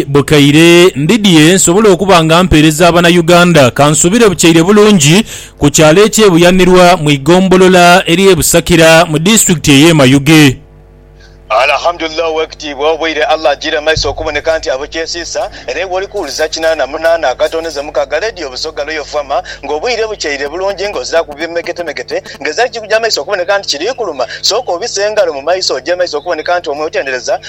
bukaire ndidhie nsobole okuba nga mpeereza Abanayuganda. Kansuubire bukyaire bulungi ku kyalo eky'e Buyanirwa mu ighombolola ery'e Busakira mu disitulikiti ey'e Mayuge. Alhamdulillah Owekitiibwa oboire Allah ajiire maiso okuboneka nti abo kyesiisa era iwe oli kuwuliza kinaana munaana akatondeze muka ga leediyo Busoga Royal FM nga obwire bukyaire bulungi nga oziraku bimeketemekete nga ezira kikuja maiso okuboneka nti kiri kuluma sooka obise engalo mu maiso oje maiso okuboneka nti omutendereza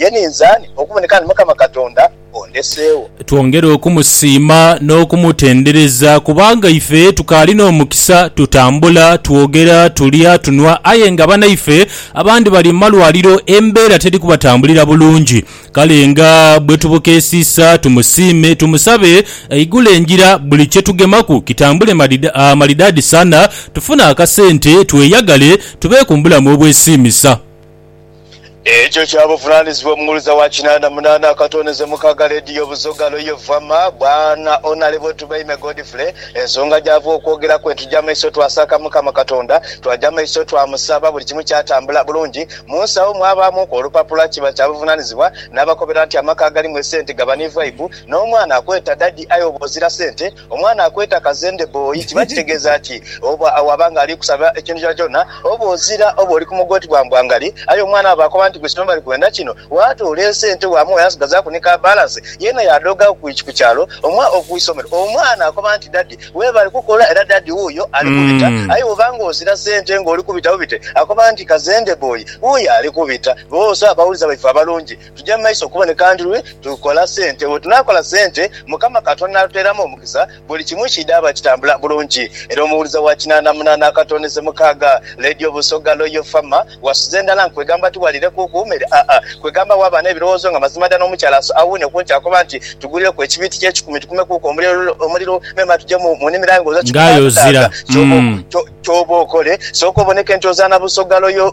Ye ninze ani okuboneka nti Mukama Katonda ondeseegho? Twongere okumusiima n'okumutendereza kubanga ife tukaali n'omukisa tutambula, twogera, tulya, tunhwa aye nga banaife abandi bali mu malwaliro embeera teri kubatambulira bulungi. Kale nga bwe tubukeesiisa tumusiime, tumusabe aigule engira buli kye tugemaku kitambule malidaadi sana, tufune akasente, tweyagale, tubeeku mu bulamu obwesiimisa. Ekyo kya buvunanizibwa omughuliza wa kinanda munana akatoneze mukaga lediyo Buzoga Loyo Vama bwana Onalebo Tubaime Godfrey ensonga gyava okwogera kwe tuja maiso twasaaka mukama katonda twaja maiso twamusaba buli kimu kyatambula bulungi munsawo mwabamuku olupapula kiba kya buvunanizibwa nabakobera nti amaka agalimu esente gaba ni vibe nomwana akweta daddy aye oba ozira sente Omwana akweta kazende boi kiba kitegeza ki? Oba waba nga ali kusaba ekintu kyona kyona oba ozira oba oli kumugoti gwa mbwangali aye omwana bwaba akoba nti gwe kino bali kwenda kino watoola esente wamuwa yasigazaku ni ka balance yena yadooga kukyalo omuwa oku isomero omwana akoba nti daddy webale kukola era daddy wuyo ali kubita aye woba nga ozira sente nga oli kubita bubite akoba nti kazende boi wuyo ali kubita bose abawuliza baife abalungi tugya mu maiso okuboneka ndi lwe tukola sente. Bwe tunaakola sente, Mukama Katonda n'atuteeramu omukisa, buli kimu kiidhaaba kitambula bulungi. Era omuwuliza wa kinaana munaana akatoneze mukaaga, Radio Busoga Loyal Farmer, wasuze ndala nkwegamba tiwaliirekuuku mere aa, kwegamba waaba n'ebirowoozo nga mazima dda n'omukyala aso awuune ku nti akoba nti tugulireku ekibiiti ky'ekikumi tukumekuuku omuliro memba tugye mu nnimiro aye nga ozo kikutaagataaga. Kyoba okole, sooka oboneke nti ozaana Busoga Loyal.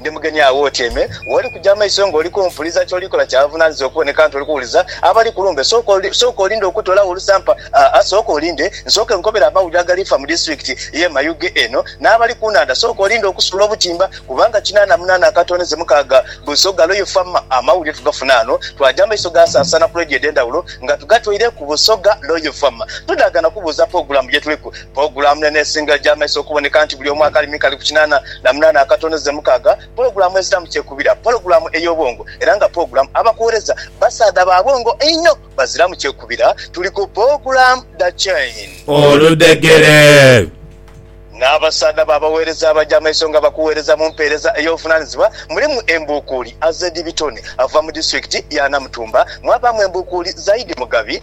Ndi mugenyi agho otyaime. Woli kuja amaiso ng'oli kumpuliza, ky'oli kola kya buvunaanyizibwa okuboneka nti oli kuwuliza abali ku lumbe. Sooka olinde okutoolawo olusampa. Aa, sooka olinde nsooke nkukobere amawulire agali fa mu disiturikiti y'e Mayuge eno, n'abali ku nhandha. Sooka olinde okusuula obutimba, kubanga kinaana munaana akatoonheze mukaaga buso galoyo fa ma. Amawulire tugafuna ghano, twaja amaiso gaasaasaana ku leediyo edh'endhawulo nga tugatweireku buso ga loyo fa ma. Tudaaga na kubuuza pulogulaamu gye tuliku. Pulogulaamu eno esinga egya maiso okuboneka nti buli omu akali mika ali ku kinaana na munaana akatono ze mukaaga, pulogulaamu eziramu kyekubira, pulogulaamu ey'obwongo era nga pulogulaamu abakuwereza basaadha ba bwongo einho baziramu kyekubira. Tuli ku pulogulaamu dha chain. Oludhegere. N'abasaadha ba baweereza abaja amaiso nga bakuweereza mu mpeereza ey'obuvunanizibwa mulimu embuukuuli Azed Bitone ava mu disitulikiti ya Namutumba, mwabaamu embuukuuli Zaidi Mugabi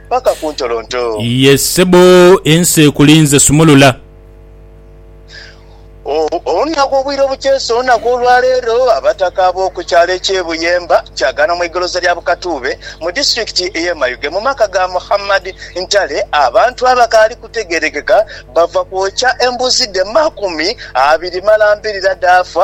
paka ku ntolonto. Iye sebo ensi ekulinze sumulula. Olunaku obwire obukyesa olunaku olwaleero abataka ab'oku kyalo eky'e Buyemba Kyagana mu igoloza lya Bukatuube mu disitulikiti ey'e Mayuge mu maka ga Muhammad Ntale abantu abakaali kutegeerekeka bava kwokya embuzi dhe makumi abiri malambirira dhaafa